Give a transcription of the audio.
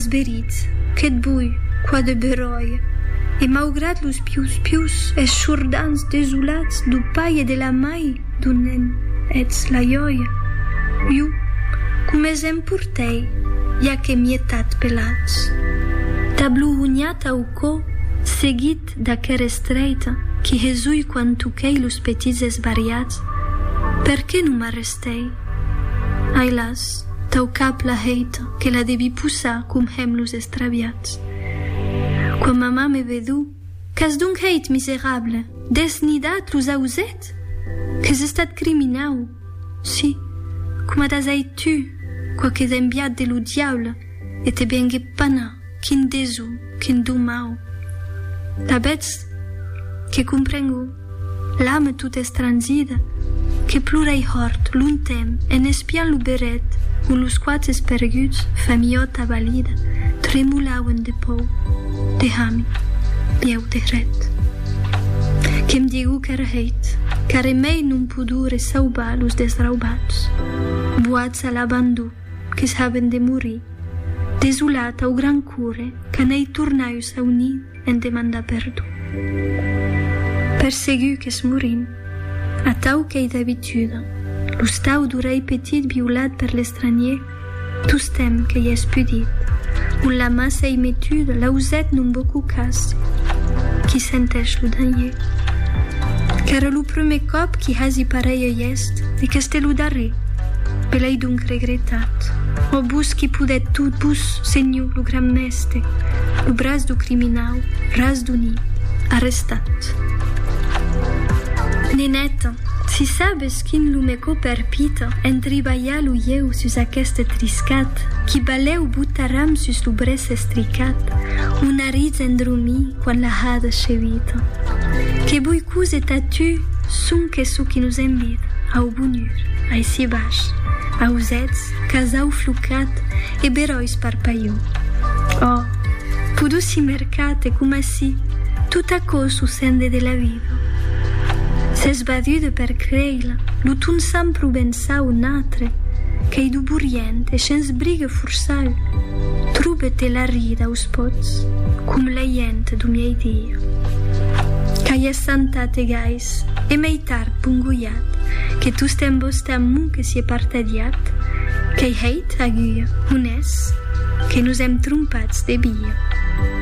Esperits, que't bui, qua de beròia. E maugrat los pius-pius esshordants desolats dau pair e de la mai dau nen, etz la jòia. Iu, coma se'n portèi, ja que mietat pelats. Tablohonhat au cò, seguit d'aquera estreita qui hesui quan toquèi los petits esbariats, perqué non m'arrestèi? Ai las, tau cap la heita. que la devi possar com hèm los estraviats. Quan mamà me vedó, Qu'as donc hèit, miserable? Dètz nidat los ausèths? Qu'es estat criminau? Sí, coma t'as hèit tu, quauquet enviat de lo diable, e te vengué panar, quin deso, quin domau! La vètz que comprengó. L'ame tot estrangida, que plorèi hòrt, longtemp, en espiant lo berret ont los quatres perguts, familhòt abalida, tremolauen de pòur, de hame, bieu de hret. Que'm digou qu'ère hèit, qu'arre mei non podure saubar los desraubats, boats a l'abandon, que's haben de morir, desolat au gran core, qu'anèi tornaius au nid, en demandar perdon. Per segur qu'es morint, atau qu'ei d'abituda, lo stau d'orelh petit violat per l'estranhier, tostemp qu'ei espudit, ont la mas ei metuda, l'auzet non vo qu'o casse, qui senteish lo danhier. Qu'ère lo prumèr còp qui hasi pareilh gèst, e qu'este lo darrer, me l'ei donc regretat. Ò vos qui podèt tot, vos, senhor, lo gran mèstre! Este, lo braç du criminau Razduni, arrestat. Neneta, si sabes quin lo me co perpita entribalhar lo ieu sus aqueste triscat, qui balèu botaram sus lo brèç estricat, o nariz endromí quan la hada chevita. Que bui cose tà tu, sonque çò qui nos envida au bonur, aicí baish, ausètz, casau flocat e beròis parpalhon. Ò, pudussi mercat e coma si tot aquò sucende de la vida. S'es badude per creir lo ton sant provençau natre qu'ei do borient e shens brigue forçau, trobe te la rida aus pòts com la hient do miei dia. Qu'ai essantat e gais. Sus e mei tard pongolhat, que tostemp vos tà m'o que sié partadiat, qu'ei hèit agur, honès, que nos èm trompats de via.